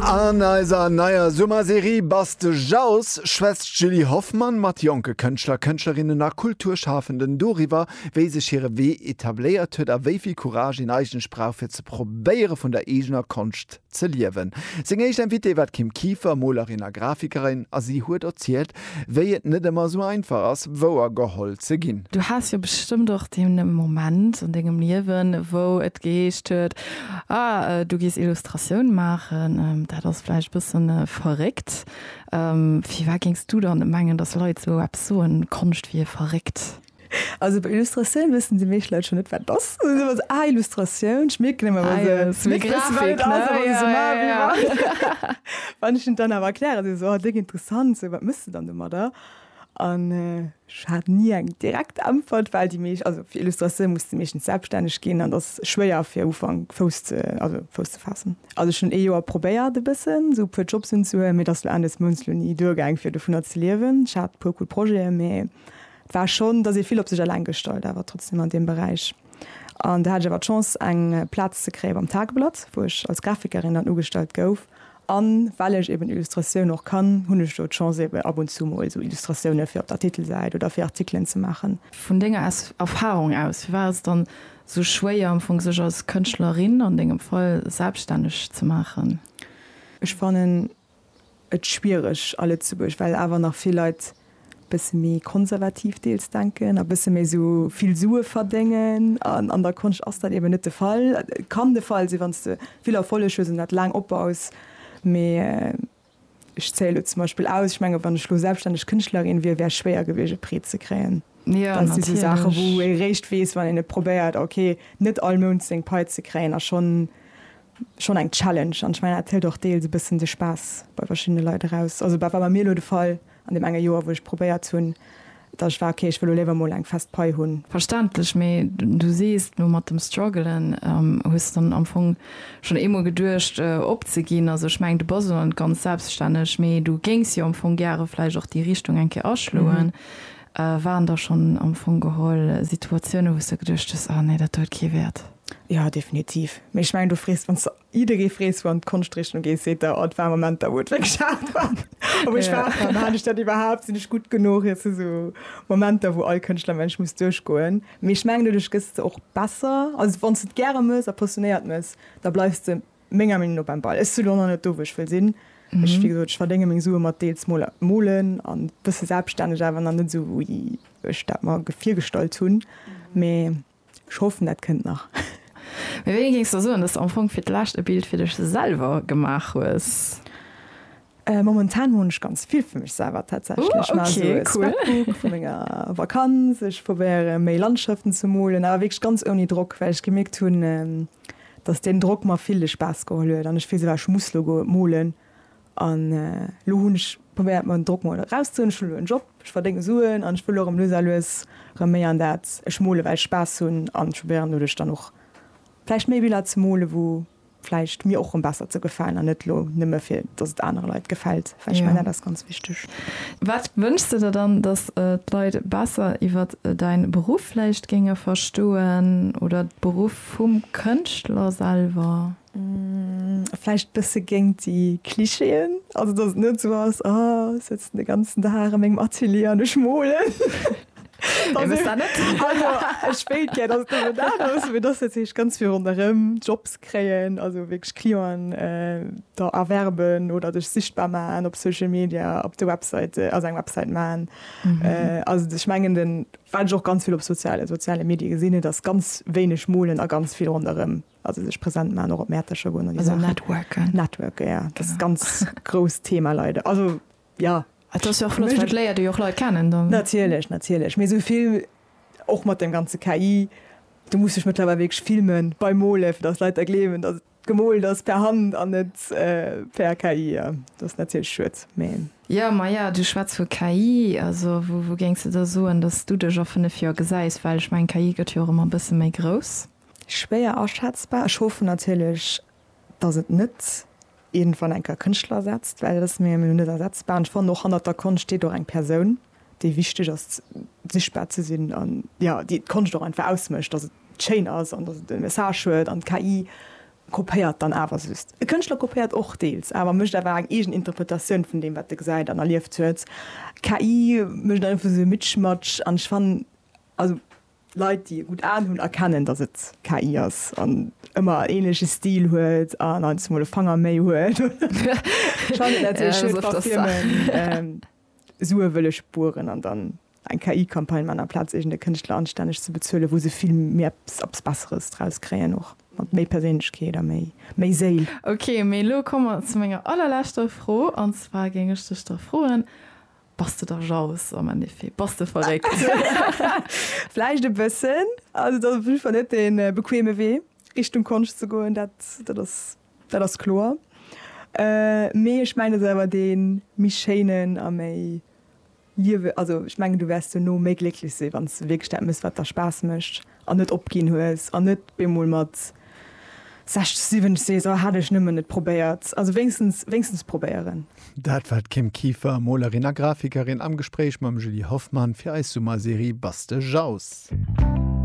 An eiser neier Summerserie Bass de Jauss schwätzt d'Julie Hoffmann mat jonke Kënschtler, Kënschtlerinnen a Kulturschafenden doriwwer, wéi sech hire Wee etabléiert huet a wéi vill Courage een eigentlech brauch, fir ze probéiere vun der eegener Konscht ze liewen. Seng éischt Invitée war d'Kim Kieffer, Molerin a Grafikerin, a si huet erzielt, Wéi et net emmer sou einfach ass wouer geholl ze ginn. Du has jo bestëmmt och den Moment an dengem Liewen wou et geheescht huet, ah du gees Illustratioun maachen, dat ass vläicht bëssen verréckt. Firwat géings du dann mengen dass Leit sou eppes soen, Konscht wier verréckt? Also bei Illustratioun wëssen déi meescht Leit schon net wat et ass. Dann si mer esou, ah Illustratioun, ech mierken ëmmer wa se ze wéi wissen wat et ass, a wa se esou maachen wéi wat. Wann ech hinnen dann awer erklären, si se esou, ah déng interessant, esou wat méchs de dann domadder? An ech hat ni eng direkt Äntwert, well déi meescht, also fir Illustratioun muss de meeschtens selbststänneg ginn an et ass schwéier fir um Ufank Fouss ze, also Fouss ze faassen. Also ech hunn ee Joer probéiert e bëssen esou e puer Jobs unzehuelen, mee et ass lo Enn des Mounts lo ni duergaang fir dovunner ze liewen. Ech hat e puer cool Projeten, mee Et war schonn, dass ee vill op sech eleng gestallt awer trotzdem an deem Beräich. An do hat ech awer d'Chance eng Plaz ze kréie beim Tageblatt, wou ech als Grafikerin dann ugestallt gouf. A well ech eben Illustratioun och kann, hunn ech do d'Chance eben ab und zu mol esou Illustratioune fir op der Titelsäit oder fir Artikelen ze maachen. Vun denger Erfarung aus, firwat ass et dann esou schwéier am Fong sech als Kënschtlerin, an dengem Fall, selbststänneg ze maachen? Ech fannen, et schwiereg a Lëtzebuerg, well awer nach vill Leit bësse méi konservativ deels denken a bësse méi esou vill Sue verdéngen. An an der Konscht ass dat eben net de Fall. Et kann de Fall sinn, wann s de vill Erfolleg hues an dat laang opbaus, mee ech zéie lo zum Beispill aus, ech mengen, wann ech lo selbststänneg Kënschtlerin wier, wär schwéier gewiescht e Prêt ze kréien. Dat si sou Saache wou ee réischt weess, wann een et probéiert, ok, net all Mount seng Pai ze kréien a schonn schonn eng Challenge an ech mengen dat hëlt och deels e bëssen de Spaass bei verschiddene Leit eraus. Also war bei mir elo de Fall an deem enge Joer wou ech probéiert hunn, datt ech war, okay ech wëll elo léiwer emol eng fest Pai hunn. Verständlech, mee du sees elo mat dem Struggelen, hues dann am Fong schonn eemol geduecht opzeginn. Also ech mengen du bass elo net ganz selbstänneg, mee du géings jo am Fong gäre vläicht och déi Richtung eng Kéier aschloen. Waren da schonn am Fong geholl Situatiounen wou s de geduecht hues, ah nee dat huet kee Wäert? Jo, definitiv. Mee ech mengen, du frees, wann s de jidderee frees, wou an d'Konschtrichtung gees, seet der, oh, et war Momenter, wou et wierklech haart war. A wou ech waart, maan ech dat iwwerhaapt, sinn ech gutt genuch? Et si sou Momenter, wou all Kënschtlermensch muss duerchgoen. Mee ech mengen, doduerch gëss de och besser. Also wann s de et gäre mëss a passionéiert mëss, da bleifs de menger Meenung no beim Ball. Ech si lo nach net do, wou ech wëll sinn. Ech, wéi gesot, ech verdénge meng Sue mat deels mol molen an e bësse selbststänneg, awer nach net esou, wéi ech dat mer virgestallt hunn. Mee Ech hoffen dat kënnt nach. Mee wéini géings de soen, dass de am Fong fir d'lescht e Bild fir dech selwer gemaach hues? Momentan moochen ech ganz vill fir mech selwer tatsächlech. Ech maachen esou e Scrapbook vu menger Vakanz. Ech probéieren méi Landschaften ze molen, awer wierklech ganz ouni Drock, well ech gemierkt hunn, dass deen Drock mer vill de Spaass geholl huet an ech fills ëmmer ech muss lo molen An elo hunn ech probéiert mer den Drock mol eraus ze huelen. Ech hunn elo en Job, ech verdéngen Suen an ech wëll och erëm lues a lues erëm méi an dat. Ech mole well ech Spaass hunn an ech probéieren doduerch dann och vläicht méi Biller ze mole wou vläicht mir och erëm besser ze gefalen an net elo nëmme fir dass et anere Leit gefält, well ech mengen dat ass ganz wichteg. Wat wënschs de der dann, dass d'Leit besser iwwer däin Beruff vläicht géinge verstoen oder de Beruff vum Kënschtler selwer? Vläicht bësse géingt déi Clichéen, also datt et net esou ass, ah ech sëtzen de ganzen Dag a mengem Atelier an ech molen. Wee wëllt dat net? Also ech wéilt gär, datt et net esou dat ass, mee datt dat heescht ganz vill ronderëm, Jobs kréien, also wierklech Clienten der erwerben oder dech sichtbar maachen op Social Media, op de Websäite, also eng Websäit maachen. Also ech mengen den, wat ech och ganz vill op soziale, soziale Medie gesinn, et ass ganz wéineg molen a ganz vill ronderëm. Also sech präsent man och op Mäertecher goen an also networken networken ja das ist ganz grouss Thema leider also ja léiert jo och Leit kennen dann natierlech natierlech mé souvill och mat dem ganze KI du muss sech mëttlerweil wég filmen bei Mole fir dass Leit der gleewen dat gemool ass per Hand an net äh, per KI ja. dat ass natierlech schued mé. Ja ma ja du schwätz vu KI also wou wou géings de da soen dass du dech a 5 Joer gesäis well ech meng KI gëtt jo och ëmmer e bësse méi grouss. Schwéier aschätzbar. Ech hoffen natierlech, dass et net iergendwann eng Kéier Kënschtler ersetzt, well dat ass mir elo net ersetzbar. An ech fannen och, hannert der Konscht steet och eng Persoun, déi wichteg ass, sichtbar ze sinn an, jo, déi d'Konscht och einfach ausmécht, dass et schéin ass an dass et e Message huet. An d'KI kopéiert dann awer just. E Kënschtler kopéiert och deels, awer mécht awer eng eegen Interpretatioun vun deem, wat e gesäit an erlieft huet. D'KI mécht einfach esou e Mitschmatsch an ech fannen, also. Leit, déi e gutt Aen hunn, erkennen, datt et KI ass an ëmmer en änleche Stil huet an heiansdo mol e Fanger méi huet. Sue wëlle spueren an dann eng KI-Campagne maachen, amplaz iergend e Kënschtler anstänneg ze bezuele wou se vill méi eppes Besseres draus kréien, och mat méi Perséinlechkeet a méi Séil. Ok, mee elo komme mer zu menger allerleschter Fro. An zwar géing ech dech da froen, Bass de da jaloux am Endeffet? Bass de verréckt? Vläicht e bëssen. Also dat ass op jidde Fall net dee bequeme Wee, Richtung Konscht ze goen, dat, dat ass, dat ass kloer. Mee ech mengen, et ass awer dee méi schéinen a méi liewe-, also ech mengen, du wäerts duerno méi glécklech sinn, wann s de wierklech dat méchs, wat der Spaass mécht. an net opginn hues an net bemol mat 60, 70 sees, oh hätt ech nëmmen et probéiert. Also wéinstens, wéinstens probéieren. Dat war d'Kim Kieffer, Molerin a Grafikerin am Gespréich mam Julie Hoffmann fir eis Summerserie Bastejaus.